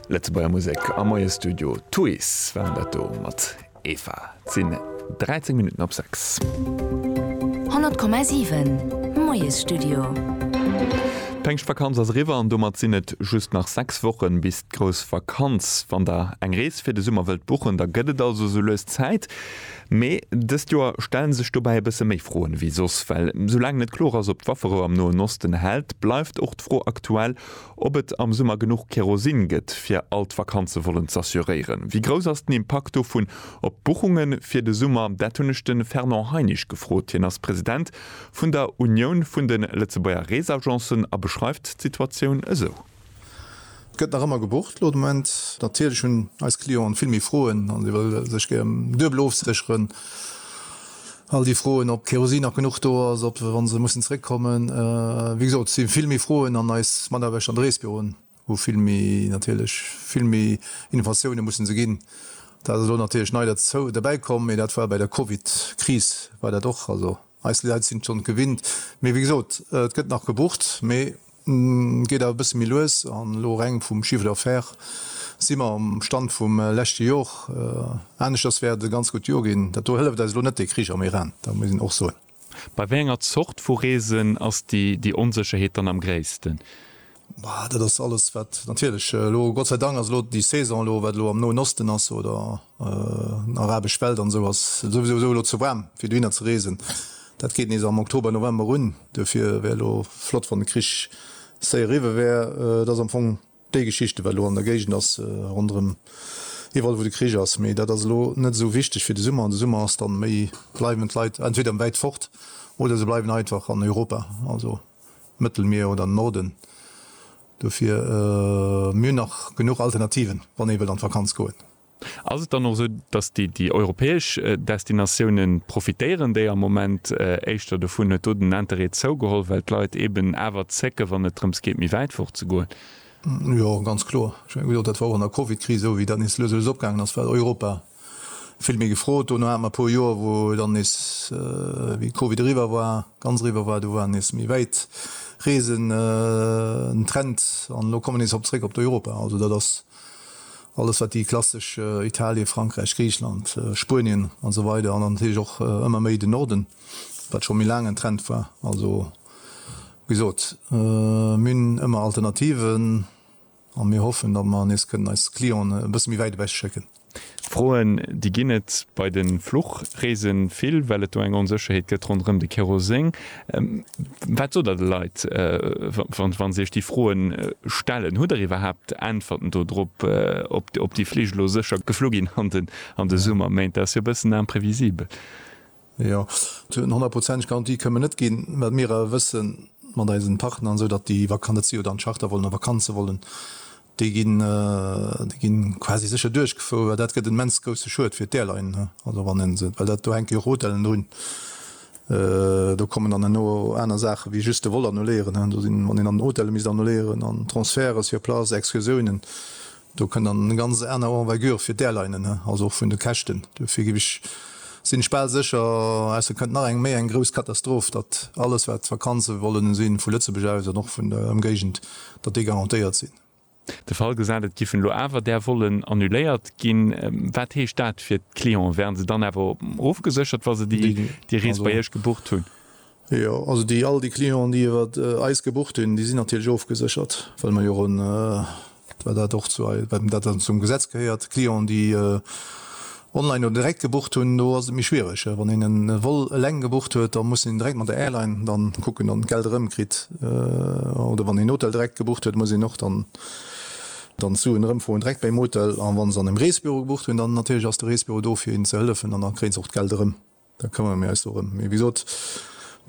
Lëtzebuerger Musek am Moie Studio. Tuys waren dat do mat Eva. Et sinn 13 Minutten op 6. 100,7, Moiesstudio. D'Péngschtvakanz ass eriwwer an domat sinn et just nach 6 Wochen bis d'grouss Vakanz. Wann der eng Rees fir de Summer wëllt buchen, da gëtt et also sou lues Zäit. Mee dëst Joer stelle sech dobäi e bësse méi Froen ewéi soss. Well soulaang net kloer ass, ob d'Wafferou am Noen Osten hält, bleift och d'Fro aktuell, ob et am Summer genuch Kerosin gëtt, fir all d'Vakanze wollen z'assuréieren. Wéi grouss ass den Impakt dovun op d'Buchunge fir de Summer? Dat hunn ech de Fernand Heinisch gefrot. Hien ass President vun der Unioun vun de Lëtzebuerger Reesagencen a beschreift d'Situatioun esou. Gëtt nach ëmmer gebucht elo de Moment. Natierlech hunn eis Clienten vill méi Froen an si wëlle sech gär duebel ofsécheren. All déi Froen, ob Kerosin nach genuch do ass, ob wa se mussen zeréckkommen. Wéi gesot, et si vill méi Froen an eis Mataarbechter an de Reesbüroen hu vill méi, natierlech vill méi Innovatioune musse se ginn. Dat ass elo natierlech nei derbäikomm, mee dat war bei der Covid-Kris war dat och. Eis Leit sinn schonn gewinnt, mee wéi gesot, et gëtt nach gebucht, mee geet awer e bësse méi lues. An elo reng vum Chiffre d'affaires si mer um Stand vum leschte Jor. Aneschters wär et e ganz gutt Jor ginn. Dat do hëlleft eis elo net dee Krich am Iran, dat muss een och soen. Bei wéi enger Zort vu Reesen ass déi Onsécherheet dann am gréissten? Bah, dat ass alles, wat natierlech elo, Gott sei Dank, ass elo déi Saison elo, wat elo am Noen Osten ass oder arabesch Welt an esou, ass souwisou esou elo ze waarm, fir dohinner ze reesen. Dat geet nees am Oktober, November un. Duerfir wär elo flott, wann de Krich séier eriwwe wär. Et ass am Fong déi Geschichte, wat elo an der Géigend ass, ronderëm iwwerall, wou de Krich ass. Mee dat ass elo net esou wichteg fir de Summer. An de Summer ass dann méi, Bleiwen d'Leit entweder wäit fort oder se bleiwen einfach an Europa. Also, Mëttelmier oder Norden. Dofir, mir hunn nach genuch Alternativen, wann ee wëllt an d'Vakanz goen. Ass et dann och esou, datt déi europäesch Destinatioune profitéieren, déi am Moment éischter dovun? Huet do den Interêt zougeholl, well d'Leit eeben awer zécken, wann et drëms geet, méi wäit fort ze goen? Jo, ganz kloer. Ech menge gesot, dat war och an der Covid-Kris esou, wéi dat nees lues a lues opgaangen ass, war Europa Vill méi gefrot. Dono hate mer e puer Joer, wou dann nees, wéi Covid eriwwer war, ganz eriwwer war, do war nees méi wäit Reesen den Trend. An elo komme nees op zréck op d'Europa. Also dat ass alles, wat déi klassesch Italien, Frankräich, Griichland, Spuenien a sou weider, an dann natierlech och ëmmer méi den Norden, wat scho méi laang en Trend war. Also wéi gesot, mir hunn ëmmer Alternativen. A mir hoffen, datt mer nees kënnen eis Clienten e bësse méi wäit ewech schécken. Froen, déi ginn et bei de Fluchreese vill, well et do eng Onsécherheet gëtt ronderëm de Keroseng. Wat sot Der de Leit, wa se Iech déi Froe stellen? Hutt Der iwwerhaapt Äntwerten do drop, ob déi Flich elo sécher geflu ginn an de Summerméint? Dat ass jo e bëssen imprévisible. Jo, eng honnertprozenteg Garantie kënnen mer net ginn, well mir awer wëssen, mat eisen Partner an sou, datt déi Vakan, datt si jo dann Charter wollen a Vakanze wollen, déi ginn, déi ginn quasi sécher duerchgefouer, well dat gëtt en immens grousse Schued fir d'Airline, also wann een se, well dat, do hänke jo och Hotellen drun, do kommen dann herno aner Saachen, wéi just de Vol annuléieren, do sinn, wann een dann Hotelle misst annuléieren an Transferte sur place, Excursiounen, Do kënn dann eng ganz aner Envergure fir d'Airlinen, also och vun de Käschten. Dofir gif ech, sinn ech bal sécher, ausser et kënnt nach eng méi eng grouss Katastroph, datt alles wat Vakanze wollen sinn, vu Lëtzebuerg aus an och vun der Ëmgéigend, datt déi garantéiert sinn. De Fall gesat, et giffen elo awer där Vollen annuléiert ginn, wat heescht dat fir d'Clienten? Wären se dann awer ofgeséchert, wa se déi Rees bei Iech gebucht hunn? Jo, also déi all déi Clienten, déi iwwer eis gebucht hunn, déi sinn natierlech ofgeséchert, well mer jo en, well dat och zu ei, well dat dann zum Gesetz gehéiert, Clienten, déi online oder direkt gebucht hunn, do ass et méi schwierig. Wann een en Vol eleng gebucht huet, da muss een direkt mat der Airline dann kucken, dann d'Geld erëmkritt. Oder wann een Hotel direkt gebucht huet, muss een och dann dann d'Suen erëmfroen direkt beim Hotel. An wann se an engem Reesebüro gebucht hunn, dann natierlech ass de Reesebüro do fir hinnen ze hëllefen an da kréien se och d'Geld erëm. Da këmmere mir eis dorëm. Mee wéi gesot,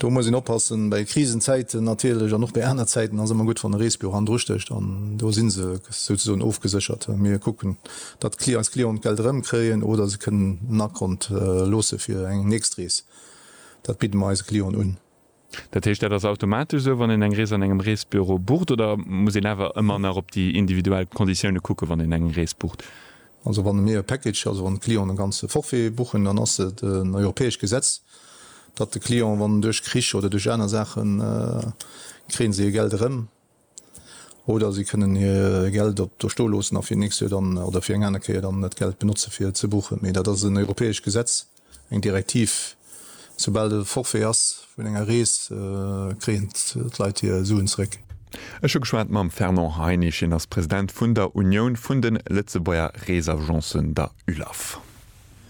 do muss een oppassen. Bei Krisenzäiten natierlech an och bei aner Zäiten ass ëmmer gutt, wann e Reesbüro hannendru stécht. An do si se souzesoen ofgeséchert. Mir kucken, datt eis Clienten d'Geld erëmkréien oder se kënnen en Akont loosse fir eng nächst Rees. Dat bidde mer eise Clienten un. Dat heescht, dat ass automatesch esou, wann een eng Rees an engem Reesbüro bucht, oder muss een awer ëmmer nach op déi individuell Konditioune kucken, wann een eng Rees bucht? Also wann mir e Package, also wann d'Clienten e ganze Forfait buchen, dann ass et en europäescht Gesetz, datt de Client, wann duerch Krich oder duerch aner Saachen, kréie si hir Geld erëm. Oder si kënnen hir Geld op do sto loossen a fir nächst Joer dann, oder fir eng aner Kéier dann dat Geld benotze fir ze buchen. Mee dat ass en europäescht Gesetz, eng Direktiv. Soubal e Forfait ass vun enger Rees, kréien d'Leit hir Suen zeréck. Ech hu geschwat mam Fernand Heinisch, hien ass President vun der Unioun vun de Lëtzebuerger Reesagencen, der ULAF.